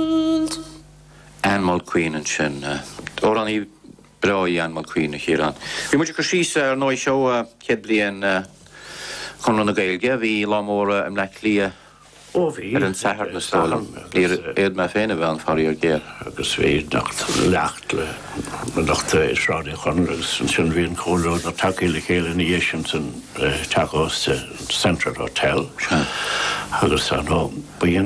World. Anne Mulqueen ansin. Amhránaí breá í Anne Mulqueen, a Chiaráin. Bhí muid ag cur síos ar ndóigh seo céad bliain Chonradh na Gaeilge, bhí lá mór i mBleá Cliath ar an tSatharn is dóigh liom. Níor fhéad mé féin a bheith ann faraor géar. Agus bhí léacht i Sráid Uí Chonaill agus ansin bhí an comhluadar ag teacht le chéile ina dhiaidh sin san Teach Ósta, Central Hotel, agus Ba é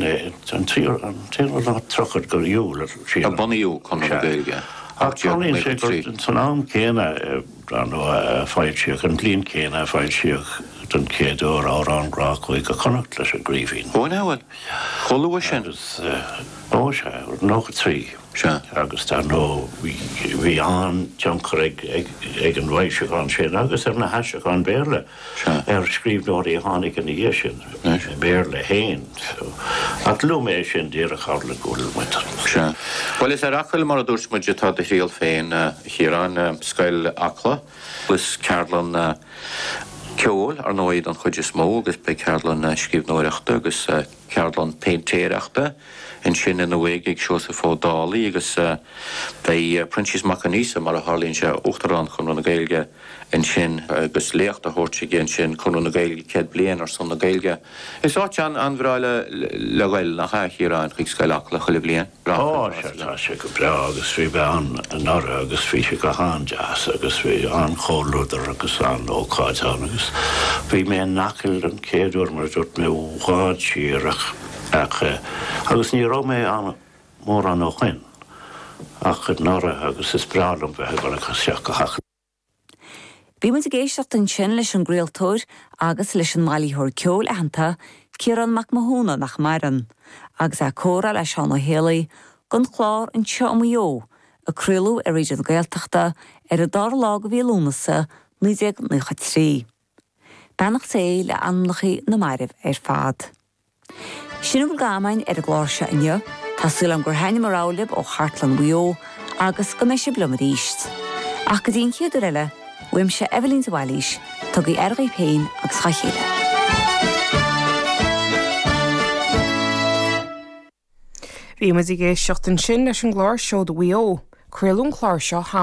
an t-aonú lá tríochad go Iúil a thriail. a bunaíodh Conradh na Gaeilge i 1893. Ach san am céanna, dar ndóigh, a foilsíodh, an bhliain chéanna a foilsíodh den chéad uair Amhráin Ghrá Chúige Chonnacht leis an gCraoibhín. Ó, ná bhuel, chomh luath sin? Agus, ó sea, 93. Sea. Agus, dar ndóigh, bhí an-tionchar ag an bhfoilseachán sin agus ag na haistriúcháin Bhéarla. ar scríbhneoirí a tháinig ina dhiaidh sin, i mBéarla féin. Ach luaim é sin díreach tharla go bhfuil muid. Bhuel, is ar Acaill, mar a dúirt muid, atá do thriall féin, a Chiaráin, Scoil Acla agus ceardlanna ceoil, ar ndóigh, don chuid is mó agus beidh ceardlann scríbhneoireachta agus. ceardlann péintéireachta ansin ann a bheidh ag Seosamh Ó Dálaigh agus beidh Proinsias Mac Aindreasa, mar a tharlaíonn sé, Uachtarán Chonradh na Gaeilge ansin agus léacht á thabhairt aige ansin, Conradh na Gaeilge, Céad Bliain ar son na Gaeilge. Is áit an-bhreá le ghoil, nach ea, a Chiaráin, chuig Scoil Acla chuile bhliain? Ó, sea, tá sé go breá agus bhí mé ann anuraidh agus bhí sé go han-deas agus bhí an-chomhluadar agus an-ócáid ann agus bhí mé in Acaill don chéad uair mar a dúirt mé, i bhfad siar ach, ach eh, agus ní raibh mé ann mórán ó shoin ach anuraidh agus is breá liom bheith ag dul isteach go hAcaill. Bhí muid ag éisteacht ansin leis an gcraoltóir agus leis an mbailitheoir ceoil aitheanta, Ciarán Mac Mathúna, nach maireann, agus é ag comhrá le Seán Ó Héalaí don chlár Ón Taobh Ó Thuaidh, a craoladh ar Raidió na Gaeltachta ar an dara lá de mhí Lúnasa, 1993. Beannacht Dé le anamnachaí na marbh ar fad. Sin a bhfuil againn ar an gclár seo inniu. Tá súil agam gur thaitnigh mo rogha libh ó Chartlann Mhaigh Eo agus go mbeidh sibh liom arís. Ach go dtí an chéad uair eile, uaimse Eibhlín de Bhailís, tugaigí aire dhaoibh féin agus dha chéile. Bhí muid ag éisteacht ansin leis an gclár Seoda Mhaigh Eo. Craoladh an clár seo thall.